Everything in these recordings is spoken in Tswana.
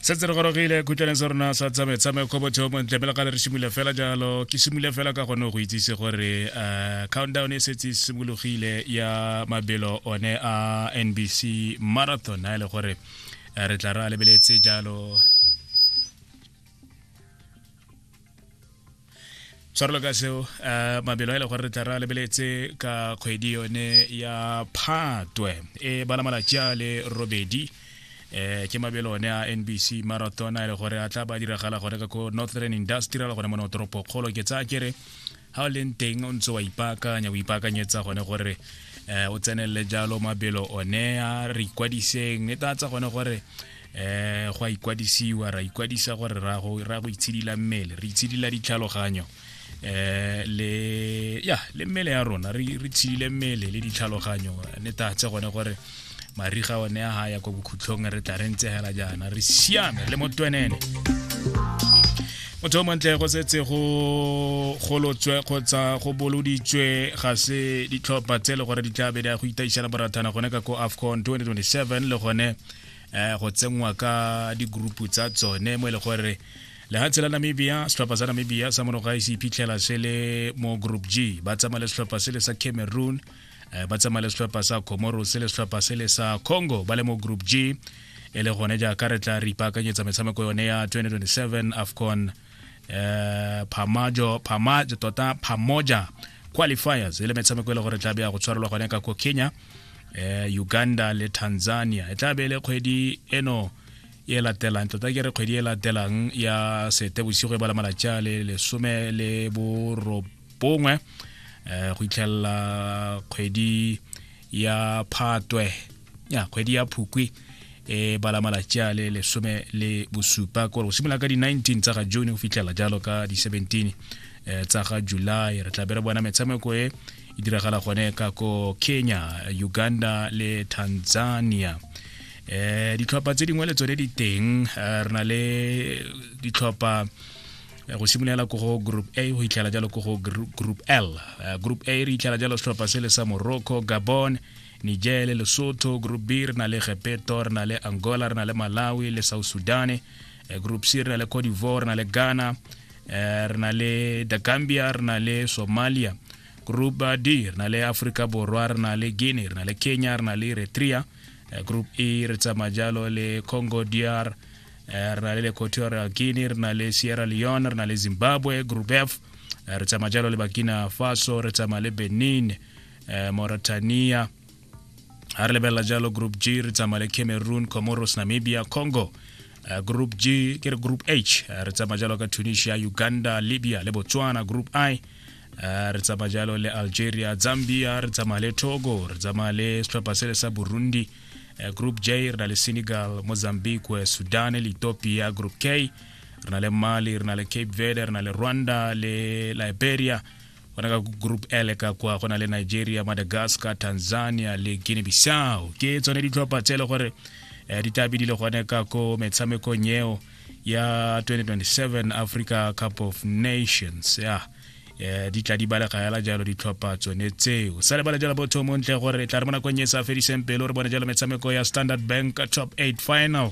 setse re gorogile khutlaneng sa rona sa tsame tsame kgobo theo montle pele gale re simole fela jalo ke simole fela ka gone go itsise gore um countdown e setse e simologile ya mabelo one a nbc marathon a e le gore eh, re tla re a lebeletse jalo tshwarelo ka seo um mabelo a e le gore re tla re a lebeletse ka kgwedi yone ya phatwe e bala malatsi a le robedi eh ke mabelo one a NBC marathon a le gore a tla ba diragala gore ka ko Northern Industrial gone mo no toropo kgolo ke tsa kere ha o leng teng o ntse wa ipaakanya o ipaakanyetsa gone gore eh o tsenelele jalo mabelo one a re ikwadiseng e tatsa gone gore eh go a ikwadisiwa ra ikwadisa gore ra go ra go itshidila mmele re itshidila ditlhaloganyo eh le ya le mmele ya rona re re tshidile mmele le ditlhaloganyo ne tatse gone gore mariga one ya ga ya kwa bokhutlhong re tla re ntse hela jaana re siame le motwenene motho o montle go setse go golotswe kgotsa go boloditswe ga se ditlhopha tse e le gore di tla be di ya go itaišela borathana gone ka ko afcon 2027 le gone um go tsenngwa ka digroupu tsa tsone mo e le gore lehatshe la namibia setlhopha sa namibia sa monoga se iphitlhela se le mo group g ba tsamaya le setlhopha se le sa cameroon um ba tsamaya le setlhopha sa comoro se le setlhopha se le sa congo ba le mo group g e le gone jaaka re tla re ipaakanyetsa metshameko yone ya 2027 afcon eh phamajo phamajo tota phamoja qualifiers e le metshameko e le gore tla be ya go tshwarelwa gone ka ko kenya eh uganda le tanzania e tla be e le kgwedi eno e latelang tota ke re kgwedi e latelang ya sete bosigo e bala malatsi a le lesome le borobongwe um go itlhelela kgwedi ya phatwe ya kgwedi ya phukwi e bala malatsi a le lesome le bosupa kore go simolola ka di-19 tsa ga june go fitlhela jalo ka di-17 eh, tsa ga july re tla be re bona metshameko e e diragala gone ka ko kenya uganda le tanzania eh ditlhopha tse dingwe le tsone di teng eh, re na le ditlhopha eh, go simolola ko go group a go itlhela jalo ko go group l eh, group a re itlhela jalo setlhopha se le sa morocco gabon niger le lesotho group b re na le gepeto re na le angola re na le malawi le south sudan Eh, group c re na le cote d'ivoire re na le ghana Eh, re na le the gambia re na le somalia group eh, d re na le africa borwa re na le guinea re na le kenya re na le eritrea Eh, group e re tsamaya jalo le congo dr Eh, re na le equatorial guinea re na le sierra leone re na le zimbabwe group f Eh, re tsamaya jalo le bakina faso re tsamaya le benin eh, Mauritania ha re lebelela jalo group g re tsamaya le cameroon comoros namibia congo eh, group g ke re group h eh, re tsamaya jalo ka tunisia uganda libya le botswana group i eh, re tsamaya jalo le algeria zambia re tsamaya le togo re tsamaya le setlhopha sele sa burundi eh, group j re na le senegal mozambique sudan le ethiopia group k re na le mali re na le cape verde re na le rwanda le liberia gona ka group l ka kwa go na le nigeria madagascar tanzania le guinea bissau ke tsone ditlhopha tse e le gore um di tabi di le gone ka ko metshamekong eo ya 2027 africa cup of nations ya um di tla di balega fela jalo ditlhopha tsone tseo sa lebale jalo botho montle gore tla re mo nakong e sa fediseng pelo re bone jalo metshameko ya standard bank top 8 final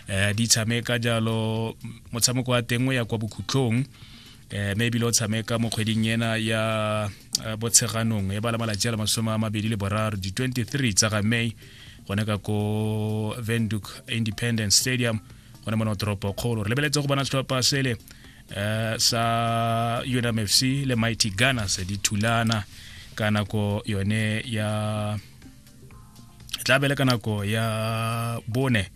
um di tshameka jalo motshameko wa tengwe ya kwa bokhutlhong eh maybe lo tshameka mo kgweding ena ya eh, botsheganong e bala malatsi a le masome a mabedi le boraro di-23 tsa ga may gone ka ko venduk independence stadium gone mona toropo kgolo re lebeletse go bona setlhopha sele eh, sa unmfc le mighty gunners di thulana ka nako yone ya tla bele ka nako ya bone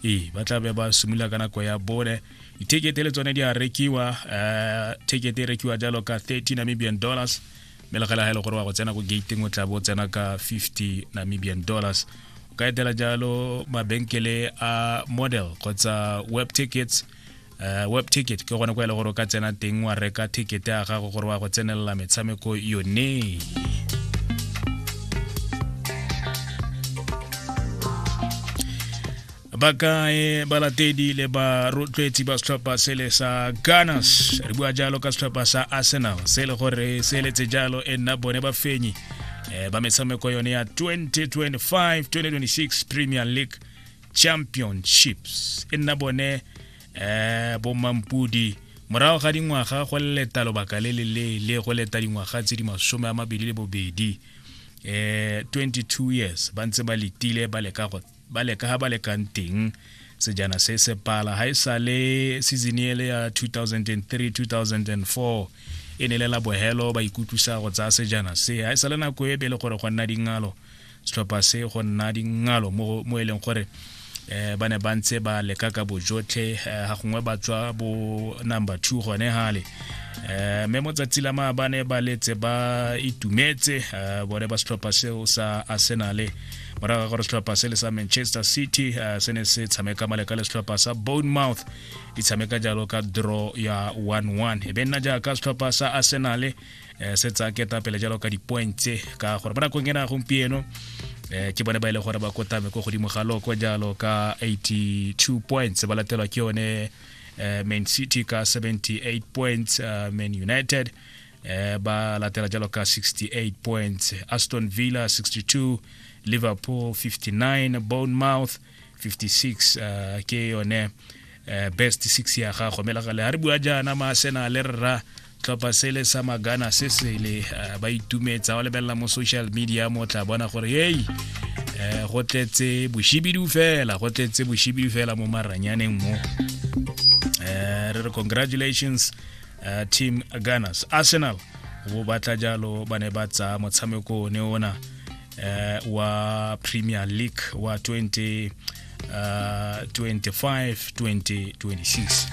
ee ba tla be ba simolola ka nako ya bone dithekete le tsone di a rekiwa um thekete e rekiwa jalo ka 30 namibian dollars mme le gela ga e le gore wa go tsena ko gateng o tla bo tsena ka 50 namibian dollars o ka etela jalo mabenkele a model kgotsa web tickets uh, web ticket ke gone kwa e le gore o ka tsena teng wa reka ticket ya gago gore wa go tsenelela metshameko yone bakae balatedi le barotloetsi ba setlhopha sele sa gunners re bua jalo ka setlhopha sa arsenal se e le gore se eletse jalo e nna bone bafenyi um eh, ba metshameko yone ya 2025 2026 premier league championships e nna bone um bomampudi morago ga dingwaga go leta lobaka le le leele go leta dingwaga tse di masome a mabedi le bobedi um eh, 22 years ba ntse ba letile ba leka ga ba lekang teng sejana se se pala ga e sa le season ele ya 2003 2004 e ne le la bohelo ba ikutlwisa go tsaya sejana se ga e sa le nako e be le gore go nna dingalo setlhopha se go nna dingalo mo e leng gore eh ba ne ba ntse ba leka ka bojotlhe eh, ga gongwe ba tswa bo number two gone gale eh mme mo tsatsi la maabane ba letse ba itumetse eh, bone ba setlhopha seo sa arsenale morago ga gore setlhopha se le sa manchester city eh, se ne se tshameka maleka le setlhopha sa bournemouth di tshameka jalo ka draw ya 11 e be nna jaaka setlhopha sa arsenale eh, se tsa ketapele jalo ka di-point tse ka gore ba nakong ena gompieno eh, ke bone ba e leng gore ba kotame ko godimo ga loko jalo ka 82 points ba latelwa ke yone eh, man city ka 78 points uh, man united eh, ba latela jalo ka 68 points aston villa 62 liverpool 59 bournemouth 56 uh, ke yone uh, best six ya gago mme lagale ga re bua jaana maasena le rra tlhopha sele sa magana se sele uh, ba itumetsa o lebelela mo social media mo tla bona gore hei um go tletse boshibidu fela go tletse boshibidu fela mo maranyaneng mo um re re congratulations uh, team gunners arsenal bo batla jalo ba ne ba tsaya motshameko ne ona eh, wa premier league wa 20, uh, 25 2026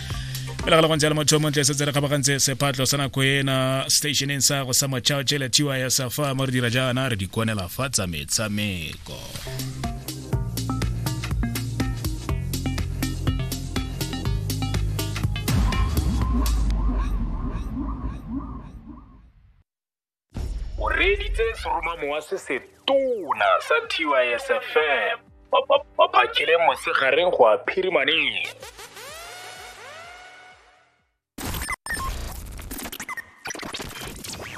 pele ga le gontse le motho montle setse re kgabagantse sephatlo sa nako ena stationeng sa go sa motšhao tšele tiwa ya safa mo re dira jaana re di konela fa tsa metshameko o reeditse seromamowa se se tona sa tysfm ba phakile mosegareng go a phirimaneng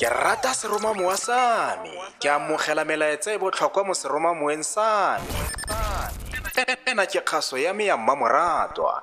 ke rata seromamowa sa me ke amogela melaetsa e botlhokwa mo seromamoeng sa me ena ke kgaso ya me ya mmamoratwa